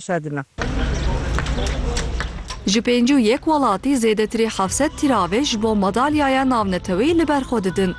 şedina. Ji pêncî û yek welatî zêdetirî heft sed tîravê ji bo madalyaya navneteweyî li ber xwe didin.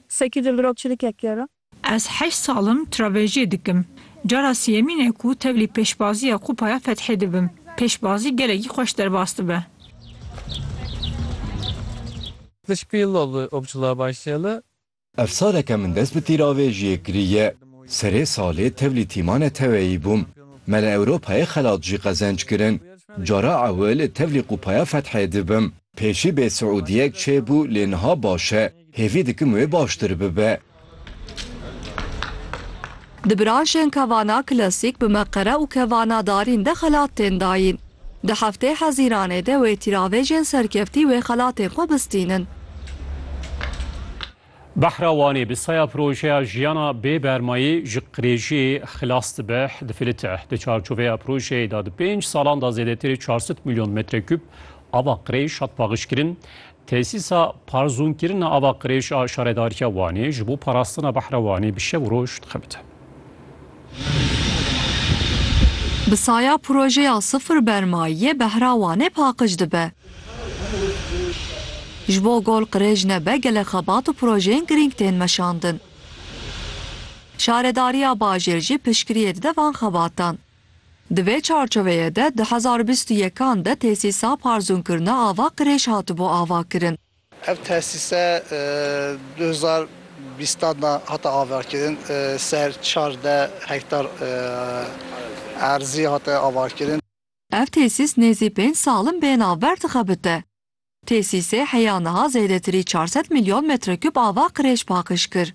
Sekî di vir û çirikek kero. Ez heşt sal im travejiyê dikim. Cara siyemîn e ku tevlî pêşbazî ya Kupaya Fethê dibim. Pêşbazî gelekî xweş derbas dibe. Di şpîl li Opçila Başê li Ev saleke min dest bi tîravêjiyê kiriye. Serê salê tevlî tîma neteweyî bûm. Me li Ewropayê xelat jî qezenc kirin. Cara ewil tevlî Qûpaya Fethê dibim. Pêşî bê siûdiyek çêbû lê niha baş e. Hêvî dikim wê baştir bibe. Di branşên kevana klasîk bi meqere û kevana darîn de xelat tên dayîn. Di heftê Hezîranê de wê tîravêjên serkeftî wê xelatên xwe bistînin. Behra Wanê bi saya projeya Jiyana bê bermayî ji qirêjiyê xilas dibe di Filite. Di çarçoveya projeyê de di pênc salan de zêdetirê çar sed milyon metrekûb ava qirêj hat paqijkirin. Tesîsa parzûnkirina ava qirêj a Şaredariya Wanê ji bo parastina behra Wanê bi şev û roj dixebite. Bi saya projeya sifir bermayiyê behra Wanê paqij dibe. Ji bo gol qirêj nebe gelek xebat û projeyên girîng tên meşandin. Şaredariya bajêr jî piştgiriyê dide van xebatan. Di vê çarçoveyê de di hezar û bîst û yekan de tesîsa parzûnkirina ava qirêj hatibû avakirin. Ev tesîse du hezar û bîstan de hate avakirin, ser çar deh hektar erzî hate avakirin. Ev tesîs nêzî pênc sal in bê navber dixebite. Tesîsê heya niha zêdetirî çar sed milyon metrekûb ava qirêj paqij kir.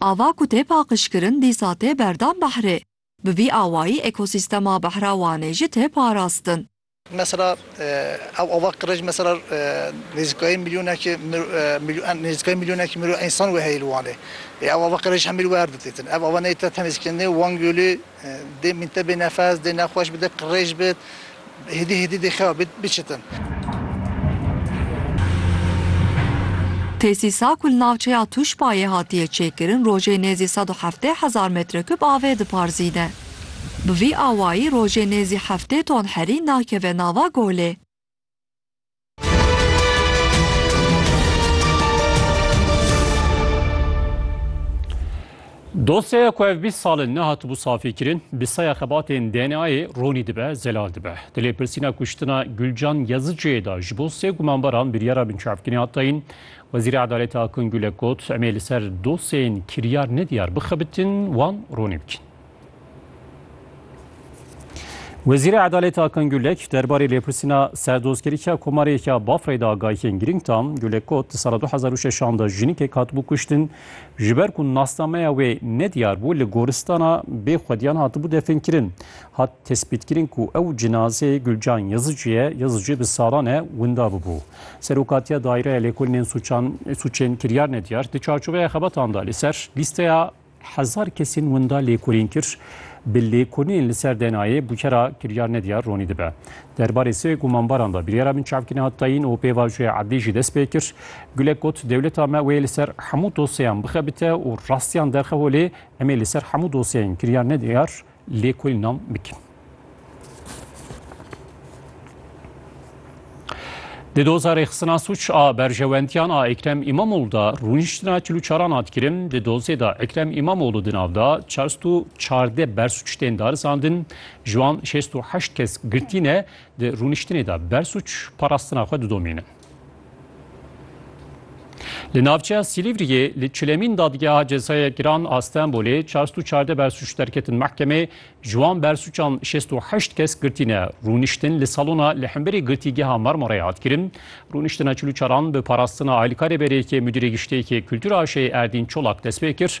Ava ku tê paqijkirin dîsa tê berdan behrê. Bi vî awayî ekosîstema behra Wanê jî tê parastin. Mesela ew ava qirêj mesela nêzîkayî milyonekî nêzîkayî milyonekî mirov însan wê heye li Wanê. Ev ava qirêj hemî li wer didîtin. Ev ava neyê te tenê zikendinê Wan Gölü Dê min te bê nefes, dê nexweş bi, dê qirêj bi, hêdî hêdî dê xewa bi, biçitin. Tesîsa ku li navçeya Tuşbayê hatiye çêkirin rojê nêzî sed û heftê hezar metrekûb avê diparzîne. Bi vî awayî rojê nêzî heftê ton herî nakeve nava golê. Dosyaya ku ev bîst sal in nehatibû safîkirin, bi saya xebatên DNA'yê ronî dibe, zelal dibe. Di lêpirsîna kuştina Gulcan Yazıcı'yê de ji bo sê gumanbaran biryara binçavkirî hat dayîn. Wezîrê Edalete Akın Gülek got, em ê li ser dosyeyên kiryar nediyar bixebitin, wan ronî bikin. Wezîrê Edaletê Akan Gulek derbarê lêpirsîna serdozkirîka komarê ya Bafreyê de agahiyên girîng da. Gulek got di sala 2006 de jinîkek hatibû kuştin ji ber ku nasnameya wê nediyar bû li goristana bê xwediyan hatibû definkirin. Hat tespîtkirin ku ew cinazê Gulcan Yazıcı ye, Yazıcı bi salan e winda bibû. Serokatiya Daireya Lêkolînên Sûçên Kiryar Nediyar di çarçoveya xebatan de li ser lîsteya Hezar kesên winda lêkolîn kir. Bi lêkolînên li ser DNA'yê bûkera kiryar ne diyar ronî dibe. Der barê sê gumanbaran de biryara binçavkirina tayîn û pêvajoya edlî jî dest pê kir. Gulek got, Dewleta me wê li ser hemû dosyeyan bixebite û rastiyan derxeho lê em ê li ser hemû dosyeyên kiryar ne diyar Lêkolî nam bikin. Di doza rêxistina suç a berjewendiyan a Ekrem İmamoğlu da rûniştina çil û çaran hat kirin. Di dozê da Ekrem İmamoğlu di nav da çarst û çardeh bersuç tên darizandin. Ji wan şêst û heşt kes girtî ne. Di rûniştinê de bersuç parastina xwe didomînin. Li navçeya Silîvriyê li çilemîn dadgeha cezaya giran a Stenbolê çar sed û çardeh bersûc derketin mehkemê, ji wan bersûcan şêst û heşt kes girtîne. Rûniştin li salona li hemberî girtîgeha Marmarayê hat kirin. Rûniştina çil û çaran bi parastina alîkarê berê yekê Mudîrê Giştê yekê Kultura Aşê Erdîn Çolak dest pê kir